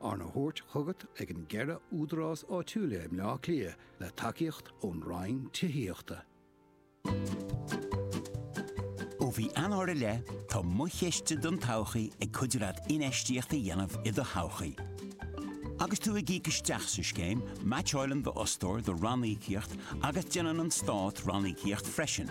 Arna thabhairt chugat ag an gceithre údarás áitiúila i mBleá Cliath le tacaíocht ón Roinn Tithíochta. Ó mhí Eanáir i leith, tá Mo Chiste don Todhchaí ag cuidiú leat infheistíocht a dhéanamh i do thodhchaí. Agus tú ag íoc isteach sa scéim, meaitseáileann d'fhostóir do ranníocaíocht agus déanann an Stát ranníocaíocht freisin.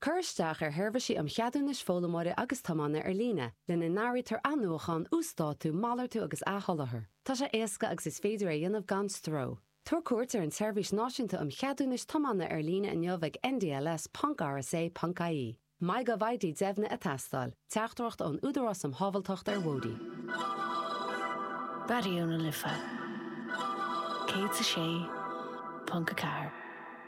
Cuir isteach ar sheirbhísí um cheadúnais foghlaimeora agus tiomána ar líne, lena n-áirítear athnuachán, uasdátú, malartú agus athsholáthar. Tá sé éasca agus is féidir é a dhéanamh gan stró. Tabhair cuairt ar an tSeirbhís Náisiúnta um Cheadúnais Tiomána ar líne inniu ag ndls.rsa.ie. MyGovID deimhnithe ag teastáil, teachtaireacht ón Údarás um Shábháilteacht ar Bhóithre. Raidió na Life 106.4.